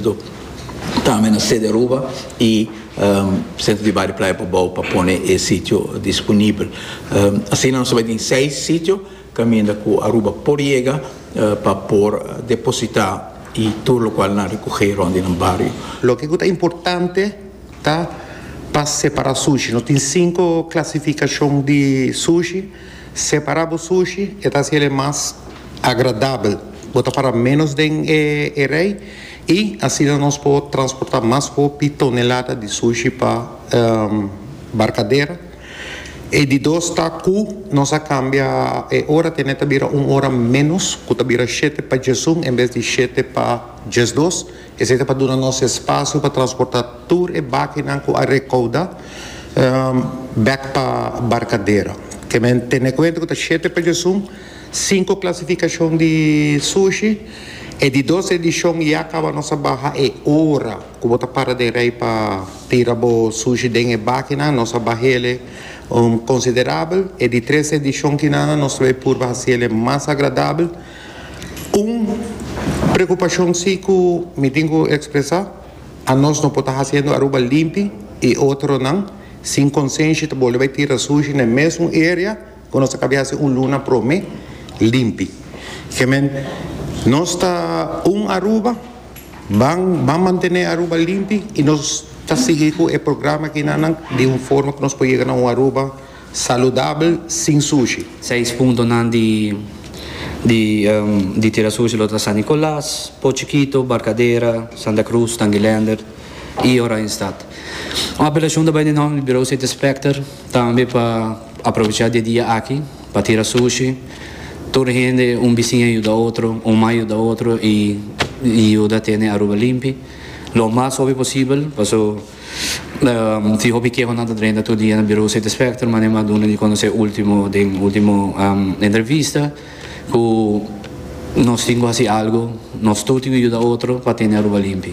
Dop tambe na Sede Aruba y Centro di Bario Playa Cubao pa pone e sitio disponibel. Asina nos a bai tin seis sitio caminda cu Aruba por yega pa por deposita y tur locual nan recoge rond di nan bario. Loke cu ta importante ta pa separa sushi. Nos tin cinco clasificacion di sushi. Separá bo sushi e ta hasiel e mas agradabel. Bo ta para ménos den e rei i asina nos por transportá mas hopi tonelada di sushi pa barkadera. E di dos ta ku nos a kambia e ora tene ta bira un ora ménos, ku ta bira shete pa djesun en bes di shete pa djesdos. Esei ta pa duna nos espasio pa transporta tur e bakinan ku a rekouda bek pa Barkadero. Kemen tene kuenta ku ta shete pejosun, sinku klasifikashon di sushi, e di dos edishon ya kaba nos a baha e ora ku bo ta para den rei pa tira bo sushi den e bakinan, nos a baha ele konsiderabel. E di tres edishon kinan nos lo e purba hasi ele mas agradabel. Un preocupacion si cu mi tin cu expresa, a nos no por ta haciendo Aruba limpi y otronan sin consenshi ta boli bay tira sushi n'e mesun area cu nos a cabia haci un luna prome limpi. Kiemen nos ta un Aruba, ban ban mantene Aruba limpi y nos ta sigui cu e programa akinanan di un forma cu nos por yega na un Aruba. Saludabel sin sushi. Seis puntonan di di tira sushi lo ta San Nicolas, Po Chikito, Barcadera, Santa Cruz, Tangilander y Oranjestad. Un apelacion ta bay den nomber di Bureau City Inspector tambe pa aprovecha di e dia aki pa tira sushi. Tur hende, un bicin a yuda otro, un man a yuda otro y yuda tene Aruba limpi lo mas hopi posibel paso. Tin hopi kehonan ta drenta tur dia na Birou City Specter, mane m'a duna di konosé último den último entrevista ku nos tin ku hasi algu, nos tur tin ku yuda otro pa tene Aruba limpi.